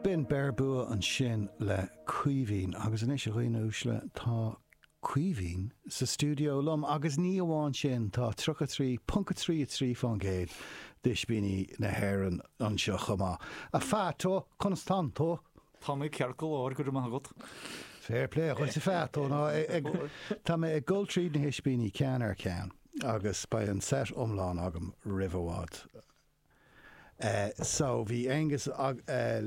B'in Beir Bua ansin le Caoimhín agus anois a dhaoine uaisle tá Caoimhín sa stiúideo liom agus ní amháin sin, tá 33.33 fán gcéad d'Ispíní na hÉireann anseo chomh maith. A Pheaito, conas tá tú? Tá mé ceart go leor, go raibh maith agat. Fair play dhuit a Pheaito, tá mé ag dul tríd na hIspíní ceann ar cheann agus beidh an set iomlán agam roimh i bhfad. so bhí Aonghus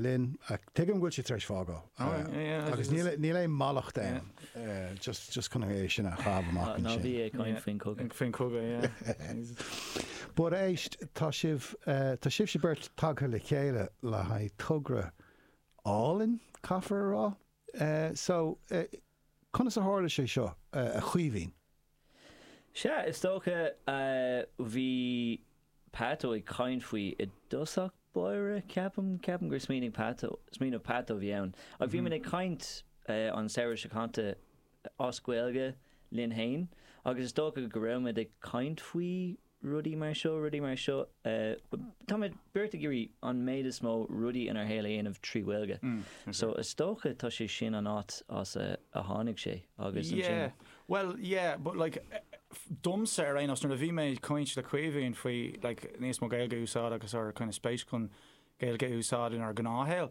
linn, tuigim go bhfuil sé tar éis fágáil agus níl aon mallacht ann, just chun é sin a chaitheamh amach ansin. Ná bí ag caint faoin chogadh. Faoin chogadh, yeah. But éist, tá sibh, tá sibhse beirt tagtha le chéile le haghaidh togra álainn, caithfear a rá? So, conas a tharla sé seo, a Chaoimhín? Sea, is dócha, bhí Peaito ag caint faoi i dtosach báire, ceapaim, ceapaim gur smaoinigh, smaoineamh Peaito a bhí ann. Agus bhí muid ag caint an samhradh seo caite as Gaeilge linn fhéin agus is dócha go raibh muid ag caint faoi, rudaí mar seo, rudaí mar seo. Táimid beirt ag iarraidh an méid is mó rudaí inár shaol a dhéanamh trí Ghaeilge. So is dócha tá sé sin an áit as a tháinig sé agus ansin. Bhuel, yeah, but like, domsa ar aon nós, nuair a bhí mé ag caint le Caoimhín faoi like níos mó Gaeilge a úsáid agus ár kind of spéis chun Gaeilge a úsáid inár ngnáthshaol,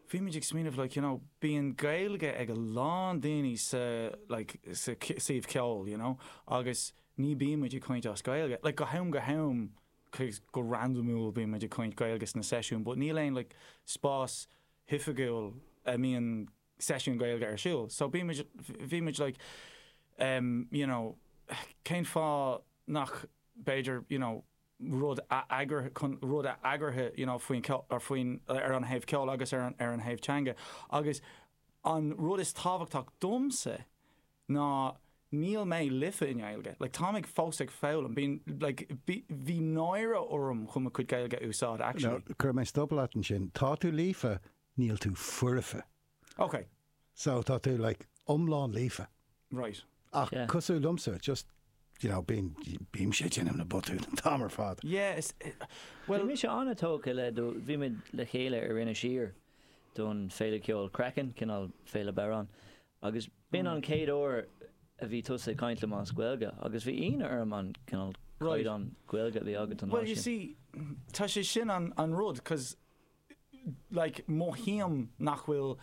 bhí muid ag smaoineamh like, you know, bíonn Gaeilge ag a lán daoine sa like sa suíomh ceoil, you know, agus ní bíonn muid ag caint as Gaeilge, like go ham go ham like go randamúil bíonn muid ag caint Gaeilge sna seisiúin but níl aon like spás oifigiúil a mbíonn seisiún Gaeilge ar siúl so bíonn muid, bhí muid like em you know cén fáth nach b'fhéidir you know rud a eagrú chun rud a eagraithe you know faoin ar faoin ar an thaobh ceoil agus ar an ar an thaobh teanga agus an rud is tábhachtach domsa ná níl mé líofa i nGaeilge, like táim ag fós ag foghlaim, bíonn, like bhí, bhí náire orm chun mo chuid Gaeilge a úsáid, actually. Now, cuirfidh mé stop leat ansin, tá tú líofa, níl tú foirfe. Ok. So, tá tú, like, iomlán líofa. Right. Ach Yeah. cosúil liomsa, just, you know, bíonn, bímse ag déanamh na botúin an t-am ar fad. Yeah, is, Bhí well, mise an-tógtha le do, bhí muid le chéile ar Inis Oírr don Féile Ceoil Craiceann, cineál Féile Bodhrán, Agus b'in an chéad uair a bhí tusa ag caint liom as Gaeilge, agus bhí ionadh orm an cineál caighdeán Gaeilge a bhí agat an lá sin. Well, you see, tá sé sin an rud, cos, like, mothaím nach bhfuil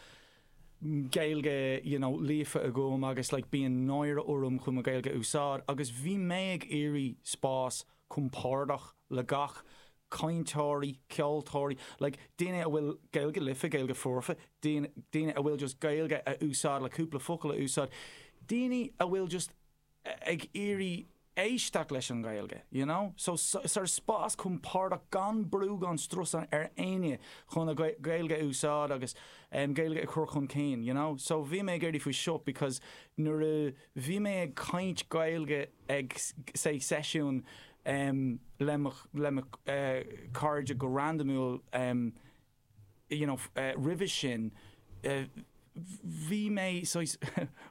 Gaeilge, you know, líofa agam agus, like, bíonn náire orm chun mo Ghaeilge a úsáid, agus bhí mé ag iarraidh spás compordach le gach cainteoirí, ceoltóirí, like daoine a bhfuil Gaeilge líofa, Gaeilge foirfe, daoine a bhfuil just Gaeilge a úsáid le cúpla focal a úsáid, daoine a bhfuil just ag iarraidh éisteacht leis an nGaeilge, you know. So sort of spás compordach gan brú gan strus ar éinne chun a Gaeilge a úsáid agus Gaeilge a chur chun cinn, you know. So bhí mé ag iarraidh faoi seo because nuair a. Bhí mé ag caint Gaeilge ag seisiún le mo chairde go randamúil you know roimhe sin, bhí mé saghas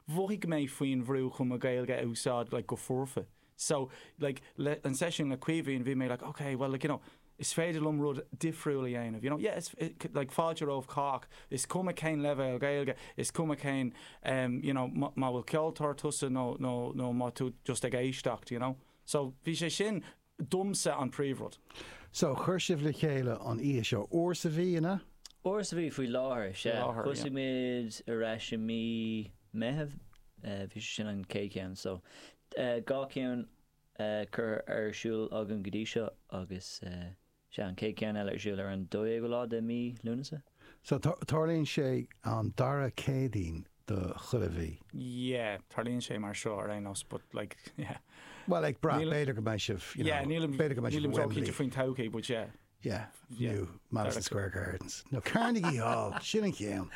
mhothaigh mé faoin bhrú chun mo Ghaeilge a úsáid like go foirfe. So, like, le, an seisiún le Caoimhín, bhí mé like, ok, bhuel, like, you know, is féidir liom rud difriúil a dhéanamh, you know, yeah, is, like, fáilte roimh cách, is cuma cén leibhéal Gaeilge, is cuma cén, em, you know, má, má bhfuil ceoltóir tusa nó, nó, nó má tú just ag éisteacht, you know. So, bhí sé sin, domsa, an príomhrud. So, chuir sibh le chéile an oíche seo, uair sa mhí, an ea? Uair sa mhí faoi láthair, sea. láthair, yeah. Thosaigh muid ar ais i mí Meitheamh, eh, bhí sé sin an chéad cheann, so, dhá cheann curtha ar siúl agam go dtí seo agus sea, an chéad cheann eile ar siúl ar an 12ú lá de mí Lúnasa. So, tarlaíonn sé an dara Céadaoin de chuile mhí? Yeah, tarlaíonn sé mar seo ar aon nós but like, yeah. Bhuel, ag brath, b'fhéidir go mbeidh sibh, you know, b'fhéidir go mbeidh sibh i Wembley. Nílim cinnte faoin todhchaí but yeah. Yeah, nó Madison Square Gardens. Nó Carnegie Hall, sin an ceann.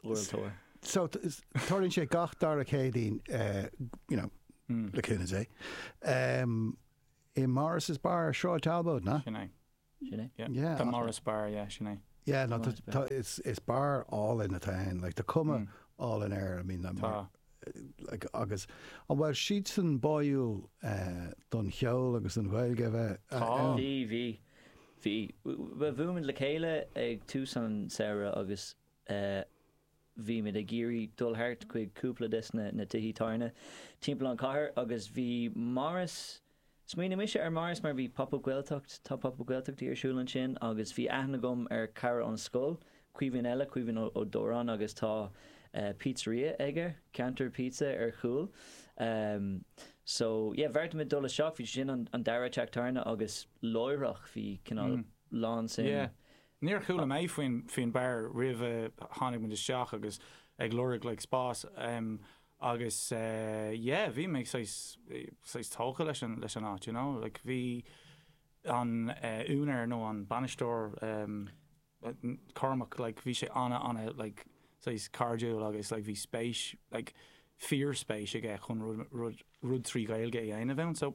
World Tour. So, tarlaíonn sé gach dara Céadaoin, you know, le cúnamh Dé, i Morris's Bar, Sráid Talbot, an ea? Sin é. Sin é? Yeah. Tá Morris Bar, yeah, sin é. Yeah, no, tá, is bar álainn atá ann, like, tá cuma álainn air, I mean, agus An bhfuil siadsan báúil don cheol agus don Ghaeilge a bheith ann? Bhí, bhí. Bhí. Bhuailmid le chéile ag tús an tsamhraidh agus bhí muid ag iarraidh dul thart chuig cúpla desna tithe tábhairne timpeall an chathair agus bhí Morris, Smaoinigh mise ar Morris mar bhí Pop Up Gaeltacht, tá Pop Up Gaeltachtaí ar siúl ansin agus bhí aithne agam ar chara ón scoil, Caoimhín eile, Caoimhín Ó Dóráin agus tá pizzeria aige, Ceantar Pizza, ar chúl. So, yeah, bheartaímid dul isteach, bhí sé sin an dara teach tábhairne agus láithreach bhí cineál lán suim. Yeah. Níor chuala mé faoin bar roimh a tháinig muid isteach agus ag lorg like spás. agus yeah bhí mé saghas saghas tógtha leis an leis an áit you know like bhí an úinéir nó an bainisteoir ehm Cormac like bhí sé ana ana like saghas cairdiúil agus like bhí spéis like fíor spéis aige chun rud rud rud trí Ghaeilge a dhéanamh ann so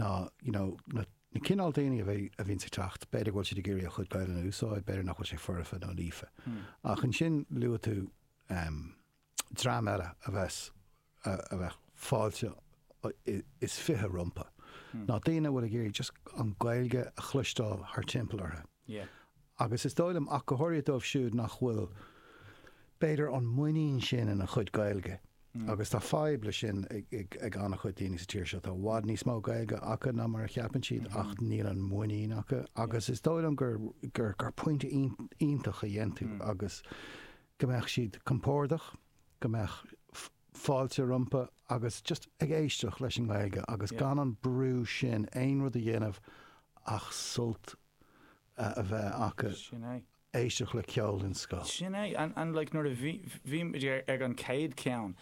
ná, you know, na cineál daoine a bhíonn ag teacht, b'fhéidir go bhfuil siad ag iarraidh a chuid Gaelainne a úsáid, b'fhéidir nach bhfuil sé foirfe nó líofa. Ach ansin luaigh tú dream eile a bheas, a bheadh fáilte is fiche rompu, ná daoine a bhfuil ag iarraidh just an Ghaeilge a chloisteáil thar timpeall orthu. agus is dóigh liom, ach go háirithe dóibh siúd nach bhfuil, b'fhéidir, an muinín sin ina chuid Gaeilge, agus tá fadhb leis sin ag an-chuid daoine sa tír seo, tá i bhfad níos mó Gaeilge acu ná mar a cheapann siad, ach níl an mhuinín acu, agus is dóigh liom gur pointe iontach a dhein tú, agus go mbeadh siad compordach, go mbeadh fáilte rompu, agus just ag éisteacht leis an nGaeilge agus gan an brú sin aon rud a dhéanamh ach sult a a bheith acu, éisteacht le ceol den scoth. Sin é, and like nuair a bhí, bhí muid ar, ag an chéad cheann,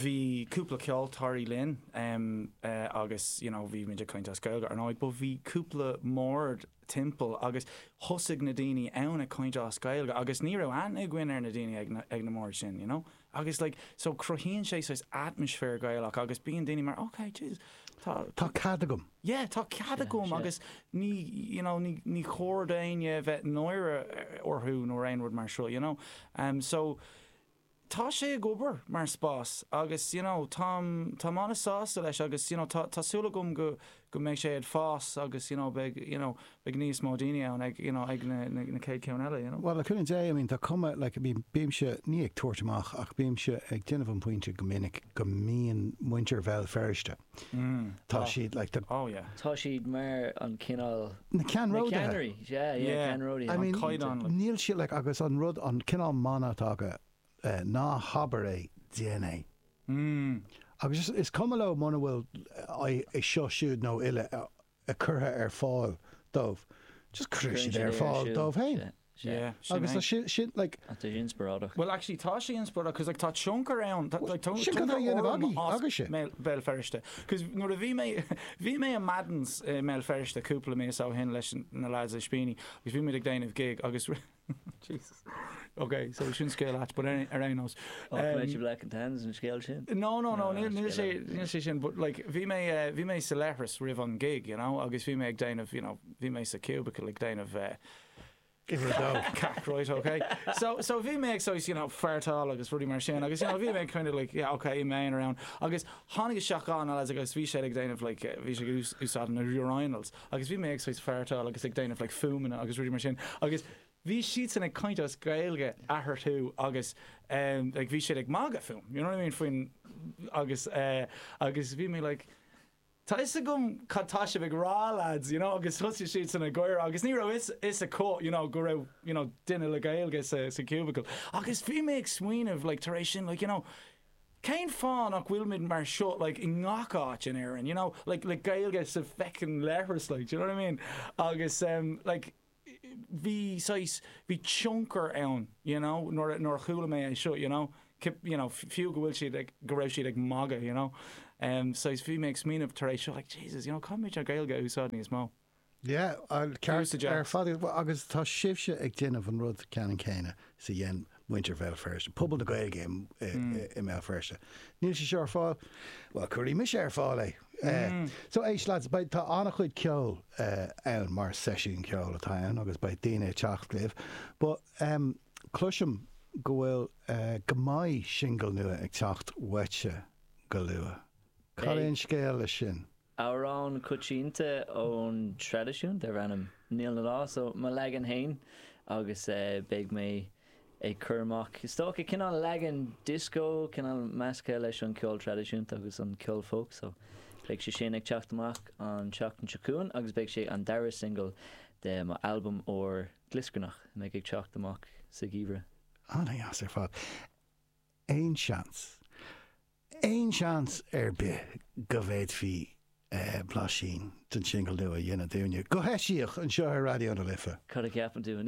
bhí cúpla ceoltóirí linn em eh agus you know bhí muid ag caint as Gaeilge, ar ndóigh, but bhí cúpla mbord timpeall agus thosaigh na daoine ann ag caint as Gaeilge agus ní raibh aithne againn ar na daoine ag na, ag na mbord sin, you know. Agus like so cruthaíonn sé saghas atmaisféar Gaelach agus bíonn daoine mar ok Jesus tá tá cead agam. Yeah tá cead agam agus ní you know ní ní chóir do éinne bheith náire orthu nó aon rud mar sin you know. Em so tá sé ag obair mar spás agus you know táim táim an-sásta leis agus you know tá tá súil agam go go mbeidh sé ag fás agus you know beidh you know beidh níos mó daoine ann ag you know ag na na chéad ceann eile you know. Bhuel le cúnamh Dé I mean tá cuma like I mean bímse ní ag tabhairt amach ach bímse ag déanamh an pointe go minic go mbíonn muintir Bhéal Feirste tá siad like the oh yeah tá siad mar an cineál na ceannródaithe yeah yeah ceannródaithe an caighdeán níl siad like agus an rud an cineál mana atá acu Ná habair é, déan é. Agus is cuma leo muna bhfuil é seo siúd nó eile curtha ar fáil dóibh, just cuireann siad é ar fáil dóibh féin. Agus tá sin like. Ach tá sé inspioráideach. Well actually tá sé inspioráideach cos like tá tionchar ann, tá like tionchar orm as. Sin cad a dhéanamh agaibh, agaibh sibh. Bhéal Feirste. Cos nuair a bhí mé, bhí mé i Madden's i mBéal Feirste cúpla míosa ó shin leis na lads i Spíní agus bhí muid ag déanamh gig agus Jesus. Ok, so sin scéal ait, but ar aon nós. Á, tá mé sibh leac an tan san scéal sin. No, no, no, níl níl sé níl sé sin, but like bhí mé eh, bhí mé sa leithreas roimh an gig, you know, agus bhí mé ag déanamh, you know, bhí mé sa cubicle ag déanamh eh, Give her a go. cac, right, ok. So, so bhí mé ag so, you know, fartáil agus rudaí mar sin, agus you know, bhí mé kind of like, yeah, ok, ní bheidh éinne around. Agus tháinig daoine isteach ansin agus bhí siad ag déanamh like, eh, bhí siad ag ús- úsáid na urinals. agus bhí mé ag saghas fartáil agus ag déanamh like fuaimeanna agus rudaí mar sin agus bhí siadsan ag caint as Gaeilge eatharthu agus em like bhí siad ag magadh fúm you know what I mean faoin agus eh agus bhí mé like tá a fhios agam cad tá sibh ag rá lads you know agus thosaigh siadsan ag gáire agus ní raibh a fhios acu you know go raibh you know duine le Gaeilge sa sa cubicle agus bhí mé ag smaoineamh like tar éis sin like you know Cén fáth nach bhfuilimid mar seo like i ngach áit in Éirinn, you know, like le Gaeilge sa feckin' leithreas like, do you know what I mean? Agus em like bhí saghas, bhí tionchar ann you know nuair a, nuair a chuala mé é seo you know, you know fiú go bhfuil siad ag, go raibh siad ag magadh you know, em saghas bhí mé ag smaoineamh tar éis seo like Jesus you know caithfimid an Ghaeilge a úsáid níos mó. Yeah, ar fad agus tá sibhse ag déanamh an rud ceannann céanna is a dhein muintir Bhéal Feirste, pobal na Gaeilge i mBéal Feirste. Níl sé seo ar fáil? Bhuel, cuirfidh mise ar fáil é. So éist lads, tá an-chuid ceoil ann mar seisiún ceoil atá ann agus beidh daoine ag teacht libh but cloisim go bhfuil, go mbeidh singil nua ag teacht uaitse go luath. Cad é an scéal leis sin? Amhrán coitianta ón traidisiún darb ainm Níl 'na Lá so, mo leagan féin agus beidh mé ag cur amach is dócha, cineál leagan disco, cineál measctha leis an ceol traidisiúnta agus an ceol folk so beidh sé sin ag teacht amach an tseachtain seo chugainn agus beidh sé an dara singil de mo albam úr Glioscarnach a mbeidh ag teacht amach sa gheimhreadh. Ana dheas ar fad. Aon seans, aon seans ar bith go bhféadfaí blaisín den singil nua a dhéanamh dúinne, go heisiach, anseo ar Raidió na Life? Cad a cheapann sibh?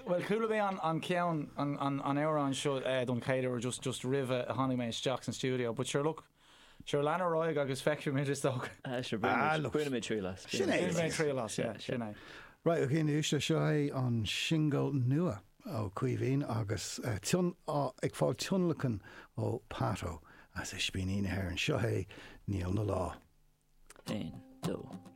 Bhuel, chuala mé an ceann, an amhrán seo don chéad uair just roimh a tháinig mé isteach san stiúideo but sure look, Sure lean ar aghaidh agus feicfimid is dócha. Ah sure Ah baineimid, looks. baineimid triail as. Sin é. Bainfidh mé triail as, yeah, sin é. Right, a Ghineas, seo é an singil nua ó Caoimhín agus eh, tion, ah, ag fáil tionlacan ó Pato as Ispíní na hÉireann. Seo é Níl na Lá. Aon, dó.